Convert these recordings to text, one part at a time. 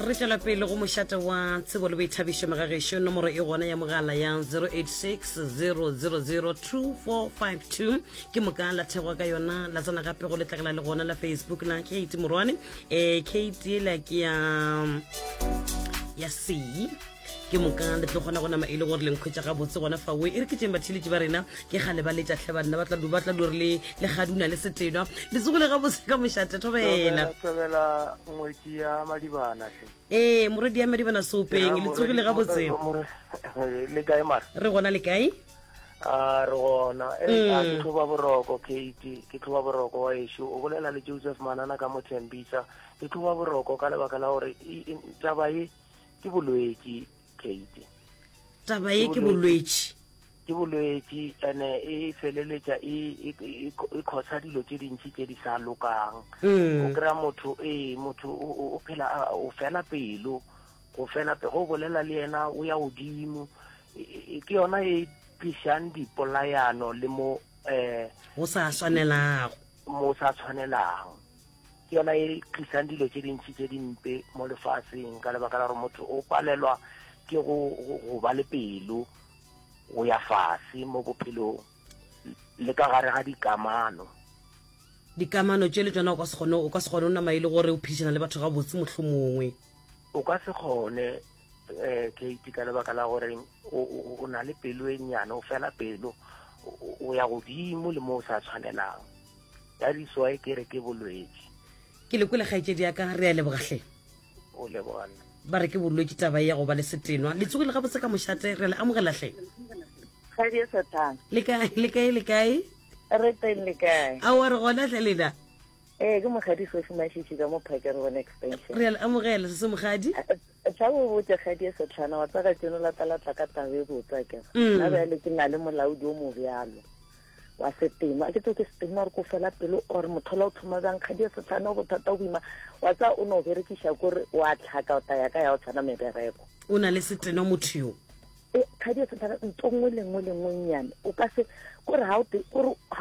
re tšwela pele go mošate wa tsebo le boithabišo megagešo nomoro e gona ya mogala ya 0860002452 ke moka la thego ka yona la tsena gape go letlakala le gona la facebook la kate morwane um kate la ke ya ya sei ke moka le tlo kgona go nama e le gore lenkhwetsa ga botse gona fa oe e re ke teng batheletši ba rena ke gale ba letša tlhe banna ba tla du ba tla dure le le gaduna le setenwa le tsogole ga botse ka mošate thobela thobela ngwetsi ya madibana hle ee moredi ya madibana sopeng le tsogile ga botse le kae mara re gona le kae a re gona e eh, a ke mm. tlhoba boroko kate ke tlhoba boroko wa ešo o bolela le joseph manana ka mothembisa ke tlhoba boroko ka lebaka la gore taba e Ke bolwetši, Kate. Taba ye ke bolwetši. Ke bolwetši, ene e feleletša e, e, e, e khosa dilo tše dintši tše di sa lokang. Mm. O kry-a motho, ee, motho o phela o fela pelo, go fela pe go bolela le yena o ya godimo. Ke yona e tlišang dipolayano le mo um go sa swanelago mo sa tshwanelang ke yona e tlisang dilo tše dintši tše dimpe mo lefaseng ka lebaka la gore motho o palelwa ke go go ba le pelo go ya fase mo bophelong le ka gare ga dikamano dikamano tše le tsona o ka se kgone o ka se kgone o nama e le gore o phedišana le batho ga botse motlho mongwe o ka se kgone um eh, kate ka lebaka la gore o na le pelo e nnyane o fela pelo o ya godimo le mo o sa tshwanelang that is why ke re ke bolwetši ke le kwele kgaetšedi ya ka re a lebogahle o lebogana ba re ke bolwetši taba ya go ba le setenwa le tsogile gabotse ka mošate re le amogelahle kgadi e sathana le kae le kae le kae re teng le kae a wa re gona tle lena ee ke mogadi sofi mašiši ka mo phakere bona extension re a le amogela se se mogadi tla bo botse kgadi e setlhana wa tsaka tseno latalatla ka tabe botsa ke mm. na bjale ke na le molaodi o mo bjalo wa setima ke tso ke setima gore ko fela pelo or mothola o tlhoma bjang kgadi ya setlhane o bothata o boima wa tsa o ne o berekiša kore wa tlhaka o taya ka ya o tshwana mebereko o na le seteno motho yo e kgadi ya setlhane nto nngwe le nngwe le nngwe nnyane o ka se kore ga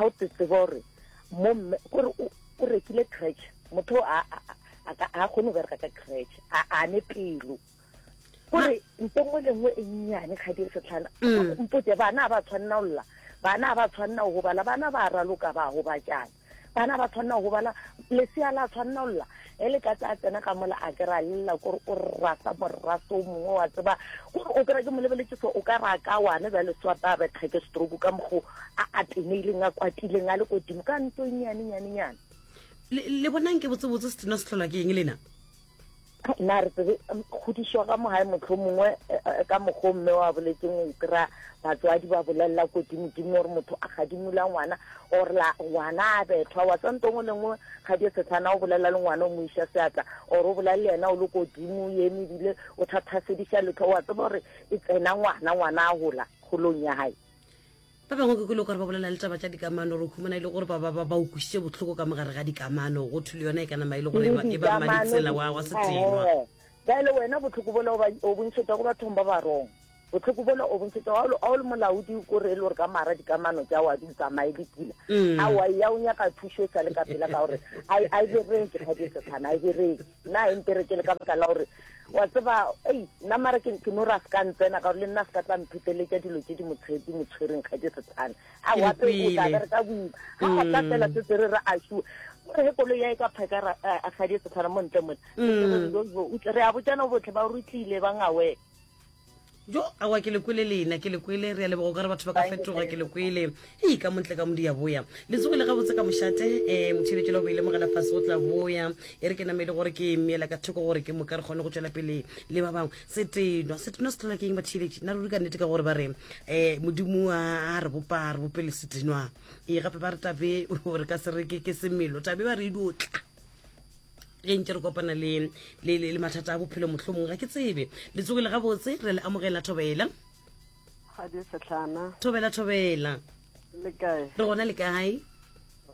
o te tseba gore mo mme kore o rekile cratch motho a kgone go bereka ka cratch a ne pelo gore mpo nngwe le nngwe e nnyane ga dire setlhana mm. mpote bana ba tshwanela go lla bana ba tshwanela go gobala bana ba raloka ba gobatšana bana ba tshwanela go gobala lesea la tshwanela go lla e le ka tsa tsena ka mola a kry-a lela kore o rasa moraso o mongwe wa tseba kore o kry-a ke mo lebeletse so o ka ra ka wane ba le swapa a betga ke stroke ka mokgo a a teneileng a kwatileng a le kodimo ka ntso e nyane nyane nyane le bonang ke botsebotse se tena se tlhola ke eng lena na re tsebe kgodišwa ga mogae motlho mongwe e, e, ka mokgwa mme wa boletseng o kry-a batswadi ba bolelela kodimodimo gore motho a gadimola ngwana or la ngwana a bethwa wa tsantse ngwe le nngwe ga di setlhana o bolelela le ngwana o mo iša seatla or o bolela le yena o le kodimo o eme ebile o thathasediša letlho wa tseba gore e tsena ngwana ngwana a gola golong ya gae Ba bangwe ke kwele gore ba bolela le taba tša dikamano, re humana e le gore ba ba ba ba o kwišitše bohloko ka mogare ga dikamano, go thwe le yona e ka nama e le gore e ba- e ba mmaditsela wa wa setenwa. Ehe. Bjale wena bohloko bola o ba- o bo ntšhetša go bathong ba barong. Bohloko bola o bo ntšhetša ga o le- ga o le molaodi ko re e le gore ka mara dikamano tša wa di tsamaye di pula. Mm. Aowa, eya o nyaka thušo e sa le ka pela ka gore a e- a e bereke kgadi e sethana, a e bereke. na e mpere ke le ka baka la gore wa tseba ei nna mare ke no ra se ka ntsena ka gore le nna se ka tla mpheteletša dilo tse di motshedi mo tshwereng ga ke setshane a wape o tla bere ka boima ga go tla fela se tsere re a sure gore he kolo ya e ka phaka ra a ga di setshana mo ntle mone re a botsana botlhe ba rutlile ba ngawe jo awa ke lekwele lena ke lekwele re a lebogo ka re batho ba ka fetoga ke lekwele e ka montle ka modi ya boya le tsogile gabotse ka mošate um eh, motšheletšo la boile mogela fase go tla boya e re ke namele gore ke meela ka thoko gore ke moka re kgone go tšwela pele le ba bangwe setenwa setenwa se tlhola ke eng batšheletši nna ruri ka nnete ka gore ba re um modimo a re bopa re bopele setenwa ee gape ba re tabe gore ka se re ke semelo tabe ba re idotla ge nke re kopana le le mathata a bophelo mohlomong ga ke tsebe le tsogile gabotse re le amogela thobela kgadi setlhana thobela thobela le kae re gona le kae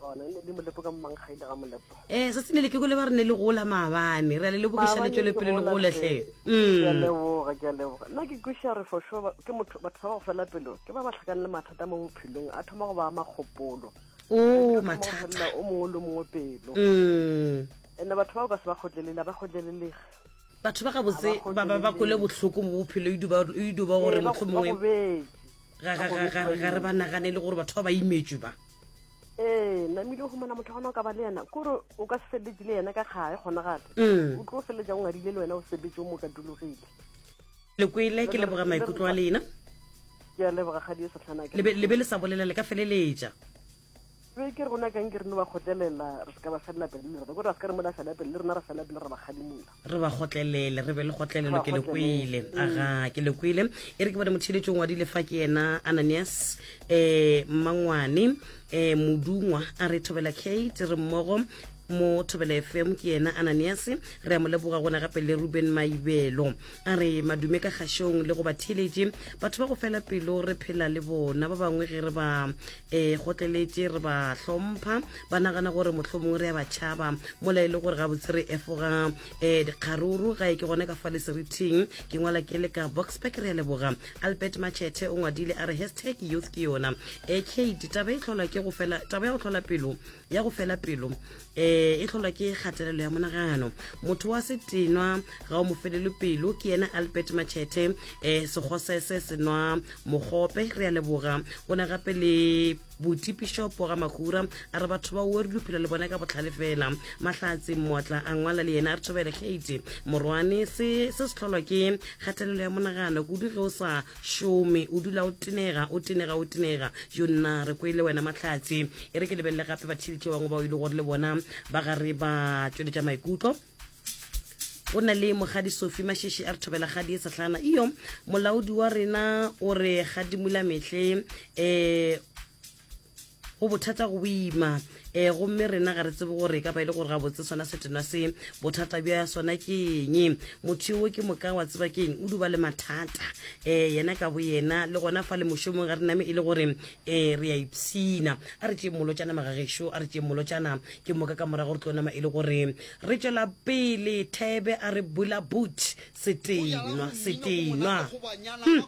gona ne le molepo ka mmanggaile ga molepo eh sa tsene le ke gole ba re ne le gola maabane re a le lebogiša le tšwele pele le gole hle mm. leboga ke a leboga nna ke kweša re for sure ke motho batho ba ba go fela pelo ke ba ba tlhakane le mathata mo bophelong a thoma go ba makgopolo o mathata o mongwe le mongwe pelo mm. ene batho bao ka se ba kgotlelele ba kgotlelelege batho ba gabotse ba ba ba kole botlhoko mo bophelo idu ba gore motlho mongwe ga re ba nagane le gore batho ba ba imetswe ba ee namile o humana motho gona o ka ba le yena kore o ka se feleletse le yena ka kgae kgonagale mm. o tlo o feleletsa o ngadile le wena o sebetse o mo ka dulogile le kwele ke leboga maikutlo a lena ke a leboga ga dio setlhana ke le be le sa bolela le ka feleletša be ke rona kang ke rene ba kgotlelela re se ka ba felela pele le rena ko re a se ka re mola fela pele le rena re fela pele re ba kgadimola re ba kgotlelele re be le kgotlelelo ke le kwele mm. aga ke le kwele e re ke bone motheletšong wa dilefa ke yena ananias um mangwane eh, modungwa a re thobela kate re mmogo mo thobela fm ke yena ananias re a mo leboga gona gape le ruben maibelo a re madume ka kgašong le go ba theletše batho ba go fela pelo re phela le bona ba bangwe ge re ba um eh, gotleletše re ba hlompha ba nagana gore motlho mongwe re ya ba tšhaba mola e le gore gabotse re efoga um dikgaruru ga e ke gona ka fa le serithing ke ngwala ke le ka boxpack re a leboga Albert Matšhethe o ngwadile a re hashtag youth ke yona e eh, kate taba e tlhola ke go fela taba ya go tlhola pelo ya go fela pelo um e tlholwa ke kgatelelo ya monagano motho wa setenwa ga o mo felelo pelo ke yena albert matšhethe um eh, segosese senwa mogope re a leboga o ne gape le boti pišopo ga magura a re batho ba o re duphela le bone ka botlhale fela mahlatse mmotla a ngwala le yena a re thobele kgate morwane se se se tlholwa ke kgatelelo ya monagano kudu ge o sa šome o dula o tenega o tenega o tenega yo nna re kwele wena mahlatse e re ke lebelele gape bathilitše bangwe bao e le gore le bona ba gare ba tšweletša maikutlo o na le mogadi sofi mašeše a re thobela gadi e setlhana iyo molaodi wa rena o re gadimula mehle um eh, go bothata go boima um gomme rena ga re tsebe gore e ka ba e le gore ga botse sona setenwa se bothata bja sona ke eng motho yoo ke moka wa tseba ke eng o duba le mathata um yena ka bo yena le gona fa le mošomong ga re name e le gore um re a ipshina a re tšee molotšana magagešo a re tšee molotšana ke moka ka morago re tlo nama e le gore re tšwela pele thebe a re bula boot setenwa setenwa hmm.